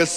Agus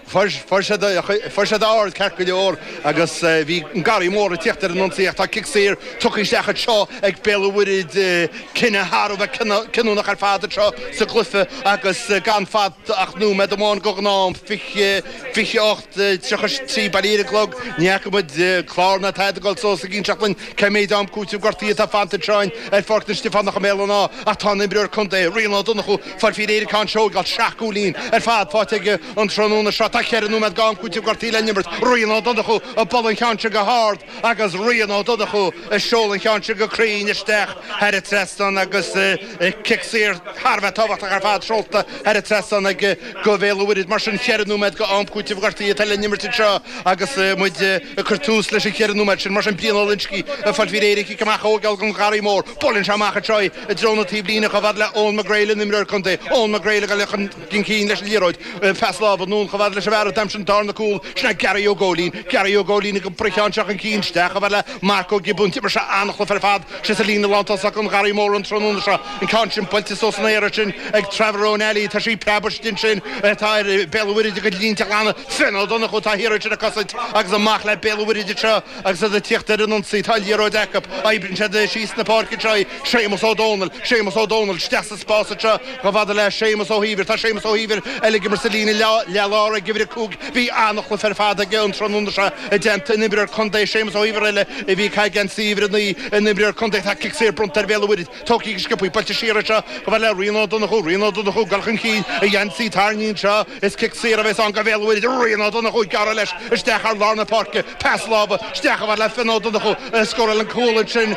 fuair siad, fuair siad ard ceart go leor agus bhí an Garraí Mór ag tíocht ar an ionsaí ach tá cic saor tugtha isteach anseo ag Béal an Mhuirthead, cinneadh thar a bheith cinniúnach ar fad anseo sa gcluiche agus gan fanta ach nóiméad amháin go ghnáth-am, 28, 33 bailithe ar an gclog, ní fhaca muid clár ná tada ag dul suas ag inseacht linn Cé mhéad am cúitimh gortaithe atá fanta anseo in, ar, Pháirc na Stiofánach i mBéal an Átha ach tá an t-imreoir contae, Rian Ó Donnchú, ag fáilt faoi réir chun seo a thógáilt, seacht gcúilín ar fad faighte aige an tráthnóna seo. Tá ceithre nóiméad go am cúitimh gortaithe le n-imirt. Rian Ó Donnchú ag bualadh an cheann sin go hard agus Rian Ó Donnchú ag seoladh an cheann sin go cruinn isteach thar an trasnán agus cic saor thar a bheith tábhachtach ar fad seolta thar an trasnán ag Go Bhéal an Mhuirthead mar sin cheithre nóiméad go am cúitimh gortaithe atá le n-imirt anseo agus muid ag cur tús leis an cheithre nóiméad sin. Mar sin Brian Ó Loingsigh ag fáilt faoi réir an cic amach a thógáil don Gharraí Mór. Buaileann sé amach anseo i dtreo na taobhlíne chomh fhad le Eoghan McGreal an imreoir contae. Eoghan McGreal ag dul chun cinn leis an liathróid. Pas lámh anonn chomh fhad leis an bhfear a d'aimsigh an darna cúl. Sin é Gary Ó Góilín. Gary Ó Góilín go bpriocann sé chun cinn isteach chomh fhad le Mark Ó Giobúin. D'imir sé an-chluiche ar fad síos sa líne lántosach an Gharraí Mór an tráthnóna seo. An ceann sin buailte suas san aer ansin ag Trevor Ó Neilí, tá sí ag preabadh istigh ansin tá ar Bhéal an Mhuirthead a gcuid línte a ghlanadh Fionn Ó Donnchú, atá thiar ansin ag cosaint agus amach le Béal an Mhuirthead anseo agus iad ag tíocht ar an ionsaí, tá liathróid acu, oibríonn siad síos na páirce anseo í, Séamus Ó Dónaill, Séamus Ó Dónaill isteach sa spás anseo chomh fada le Séamus Ó hÍomhair, tá Séamus Ó hÍomhair eile ag imirt sa líne leath-lár ag uimhir a cúig, bhí an-chluiche ar fad aige an tráthnóna seo i dteannta an imreoir contae Séamus Ó hÍomhair eile a bhí ag caitheamh geansaí uimhir a naoi, an imreoir contae, tá cic saor bronnta ar Bhéal an Mhuirthead. Tógtha go sciobtha buailte siar anseo chomh fhad le Rian Ó Donnchú, Rian Ó Donnchú gul chun cinn a gheansaí tarraingthe anseo is cic saor a bheas ann go Bhéal an Mhuirthead, Rian Ó Donnchú ag gearradh leis isteach thar lár na páirce, pas láimhe isteach chomh fhad le Fionn Ó Donnchú a scóráil an cúl ansin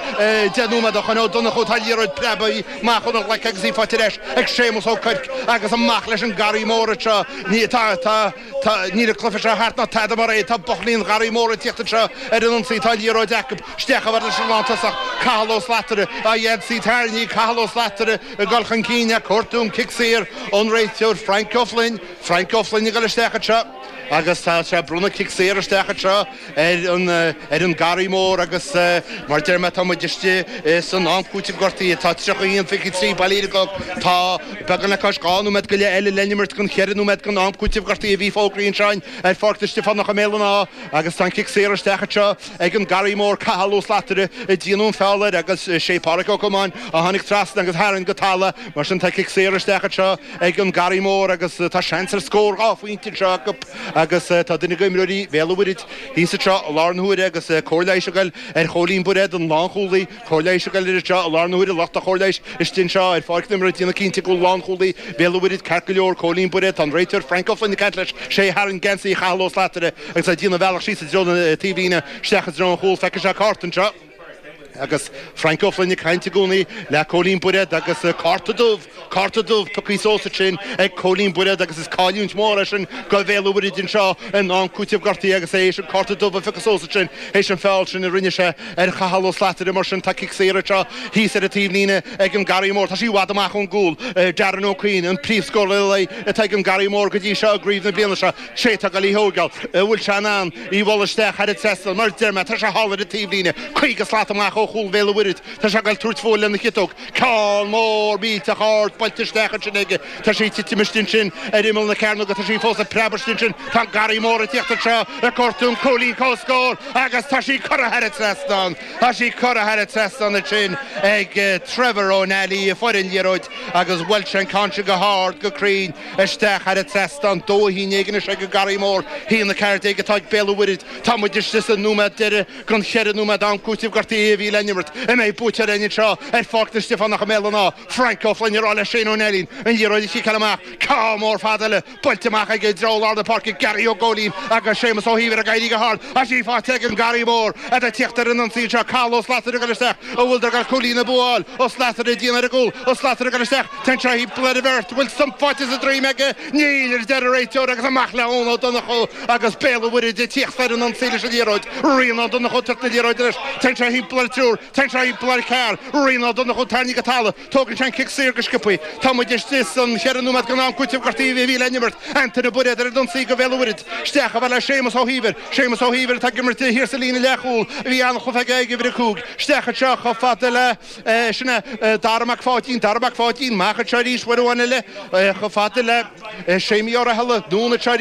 deich nóiméad ó shoin, Ó Donnchú tá liathróid preabtha amach óna ghlaic agus í faighte ar ais ag Séamus Ó Cuirc agus amach leis an Garraí Mór anseo, tá. Tá, níl an cluiche seo thart ná tada mar é. Tá buachaillí an Gharraí Mór ag teacht anseo ar an ionsaí. Tá liathróid acub isteach chomh fhad leis an lántosach. Cathal Ó Slatara, a gheansaí tarraingthe, Cathal Ó Slatara ag dul chun cinn, ag cuartú an cic saor ón réiteoir, Frainc Ó Floinn, Frainc Ó Floinn ag dul isteach anseo agus tá sé ag bronnadh cic saor isteach anseo. ar an, ar an Garraí Mór agus mar deir mé tá muid istigh i, san Am Cúitimh Gortaithe. Tá tríocha haon, fiche trí bailithe ar an gclog. Tá beagán le cois dhá nóiméad go leith eile le n-imirt don cheithre nóiméad don Am Cúitimh Gortaithe. A bhí fógraithe ansin ar Pháirc na Stiofánach i mBéal an Átha agus tá an cic saor isteach anseo ag an Garraí Mór. Cathal Ó Slatara a déanadh an feall air agus sé Pádraic Ó Comáin a tháinig trasna agus tharraing go talamh. Mar sin tá cic saor isteach anseo. ag an Garraí Mór agus tá seans ar scór dhá phointe anseo acu agus tá duine d'imreoirí Bhéal an Mhuirthead thíos anseo i láthair na huaire agus cóir leighis ag goil ar Chóilín Bairéad, an lánchúlaí. Cóir leighis ag goil air anseo i láthair na huaire, lucht an chóir leighis istigh anseo ar pháirc na himeartha ag déanamh cinnte go bhfuil lánchúlaí Bhéal an Mhuirthead ceart go leor, Cóilín Bairéad. Tá an réiteoir Frank Ó Floinn ag caint leis. Sé a tharraing geansaí Chathail Ó Slatara agus é ag déanamh a bhealach síos i dtreo na taobhlíne isteach i dtreo an chúl. Feicfidh sé cárta anseo. Agus Frank Ó Floinn ag caint i gcónaí le Cóilín Bairéad agus cárta dubh, cárta dubh pioctha suas ansin ag Cóilín Bairéad agus is cailliúint mhór é sin do Bhéal an Mhuirthead anseo in am cúiteamh gortaithe agus é théis an cárta dubh a phiocadh suas ansin théis an feall sin a rinne sé ar Chathal Ó Slatara mar sin tá cic saor anseo thíos ar an taobhlíne ag an Garraí Mór. Tá sí i bhfad amach ón gcúl. Darren Ó Cuinn an príomhscórálaí atá ag an Garraí Mór go dtí seo i gcraobh na bliana seo. Sé atá ag goil í a thógáil. An bhfuil sé in ann í a bhualadh isteach thar an trasnán? Mar a deir mé, tá sé thall ar an taobhlíne, caoga slat amach ó chúl Bhéal an Mhuirthead. Tá sé ag goil ag tabhairt fúithi lena chiotóg. Ceann mór millteach ard buailte isteach ansin aige. Tá sí ag titim istigh ansin ar imeall na cearnóige. Tá sí fós ag preabadh istigh ansin. Tá an Garraí Mór ag teacht anseo ag cuartú an cúilín comhscóir agus tá sí curtha thar an trasnán. Tá sí curtha thar an trasnán ansin ag Trevor Ó Nally, a fuair an liathróid agus bhuail sé an ceann sin go hard, go cruinn, Isteach thar an trasnán dó a haon déag anois ag an Garraí Mór. Haon a ceathair déag atá ag Béal an Mhuirthead. Tá muid istigh sa nóiméad deiridh den cheithre nóiméad am cúiteamh gortaithe a bhí le n-imirt. An mbeidh buaiteoir againn anseo ar Pháirc na Stiofánach i mBéal an Átha? Frank Ó Floinn ag rá le Shane Ó Neilín an liathróid a chiceáil amach. Ceann mór fada eile buailte amach aige i dtreo lár na páirce. Garry Ó Góilín agus Séamus Ó hÍomhair ag éirí go hard, tá sí faighte ag an Garraí Mór iad ag tíocht ar an ionsaí anseo. Cathal Ó Slattery ag dul isteach. An bhfuileadar ag goil cúilín an bhua a fháil? Ó Slattery ag déanamh ar an gcúl. Ó Slattery ag dul isteach. Téann sé thimpeall ar bheirt, bhfuil sonc faighte sa droim aige, níl, a deir an réiteoir agus amach le Eoin Ó Donnchú agus Béal an Mhuirthead ag tíocht ar an ionsaí leis an liathróid, Ryan Ó Donnchú ag tabhairt na liathróide leis, téann sé thimpeall ar triúr, téann sé thimpeall ar ceathrar, Ryan Ó Donnchú tarraingthe go talamh, tógann sé an cic saor go sciopthaí, tá muid istigh sa cheathrú nóiméad den am cúiteamh gortaithe a bhí le n-imirt, Antaine Bairéad ar an ionsaí do Bhéal an Mhuirthead, isteach a fhad le Séamus Ó hÍomhair, Séamus Ó hÍomhair atá ag imirt thiar sa líne leathchúil a bhí an-chluiche aige ag uimhir a cúig, isteach anseo chomh fada le. Sin é Dara Mac Pháidín, Dara Mac Pháidín, amach arís uair amháin eile, chomh fada le Séimí Ó Rathaille, Dún atá arís.